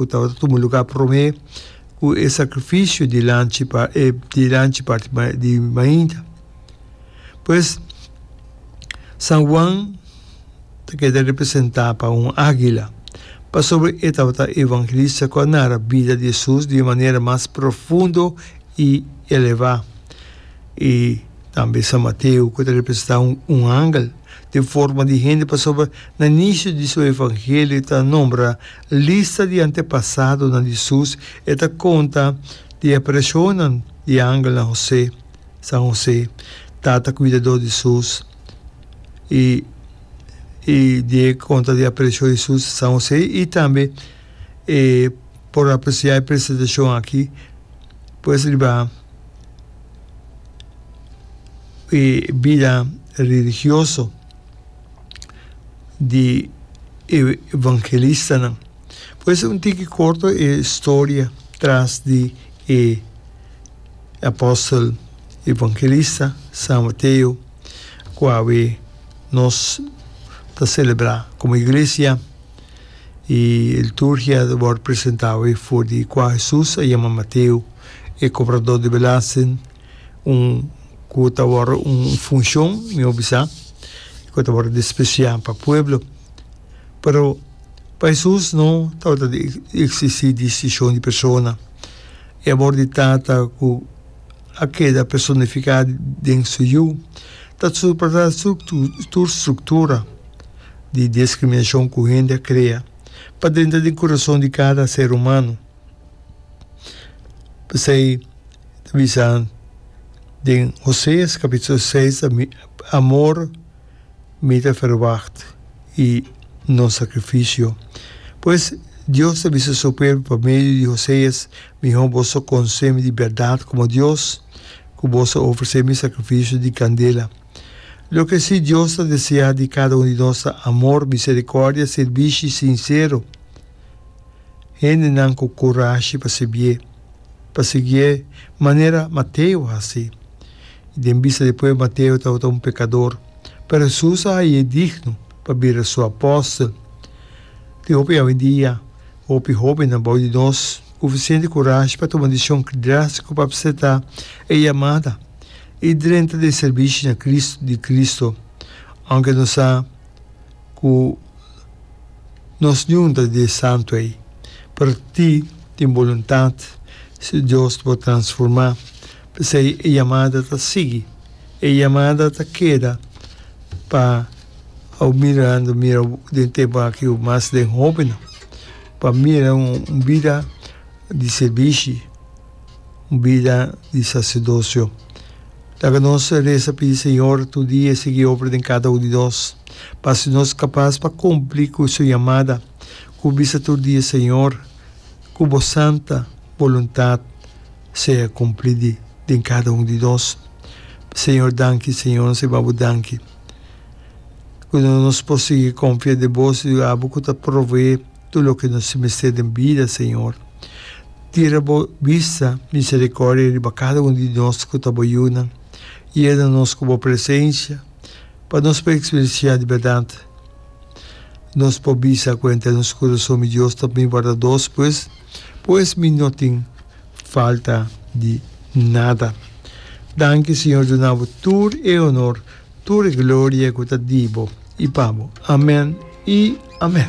ku tabata tuma lugá promé ku e sakrifisio di lanchi pa e di lanchi parti ma di mainta. Pues, San Juan ta keda representá pa un ágila, pasobra e tabata e evangelista ku a nara bida di Hesus di e manera mas profundo i elevá. I tambe San Mateo ku ta representá un un angel den forma di hende pasobra na nisio di su evangelio ta nombra Lista di antepasadonan di Sus e ta konta di e preshonnan di angel na José, San José, tata kuidadó di Sus, i i di e konta di apresio di Sus, San José, i tambe e por apresiá e presentashon aki pues riba e bida religioso. di e evangelistanan. Por eso un tiki corto e storia tras di e apostel evangelista San Mateo cu awe nos ta celebra como iglesia y e liturgia ta word presenta awe for di cua Jesus a yama Mateo e cobrador di belasting. Un ku ta wòrdu un funshon, mi obi sa, ku ta wòrdu despresiá pa pueblo. Pero pa Hesus no tabata di eksistí distishon di persona. E amor di Tata ku a keda personifiká den su Yu ta surpasá tur struktura di diskriminashon ku hende a krea pa drenta den kurason di kada ser humano. P'esei, ta bisa den Hoseas capitulo seis, Amor mi ta ferwagt i no sacrificio. Pues, Dios ta bisa Su pueblo pa medio di Hoseas, Mihor boso conse mi di berdad como Dios, cu boso ofrece mi sacrificio di candela. Loke si Dios ta desea di cada un di nos ta amor, misericordia, sirbishi sincero. hendenan ku kurashi pa sibié, pa siguié manera Mateo a hasi. I den bista di pue Mateo tabata un pekador, pero Hesus a hai'é digno pa bira su apòstel. Tin hopi awendia hopi hóbennan abou di nos ku suficiente kurashi pa tuma disishon drástiko pa apseptá e yamada i drenta den e sirbishi na Cristo di Cristo, aunke nos a. ku nos yunta di e santu ei. Pero ti tin boluntat si Dios bo transformá, p'esei e yamada ta sigui. E yamada ta keda pa au mirando mira den tempu aki o mas den hóbennan, pa mira un bida di sirbishi, un bida di saserdosio. Laga nos resa pidi Señor tur dia e sigui obra den cada un di nos, pa haci nos capaz pa cumpli cu su yamada, cu bisa tur dia Señor, cu bo santa boluntad sea cumplidi den cada un di nos. Señor danki Señor nos a babo danki cu nos por sigui confia den bo si abo cu ta provee. tur loke nos tin mester den bida, Señor. Tira Bo bista misericordia riba cada un di nos cu ta Bo yunan. Yena nos cu Bo presencia pa nos por experiencia di berdad. Nos por bisa cuenta den nos curason mi Dios ta mi wardados, pues, pues mi no tin falta di nada. Danki, Señor, duna Bo tur e honor, tur e gloria cu ta di Bo y pa Bo. Amen y amen.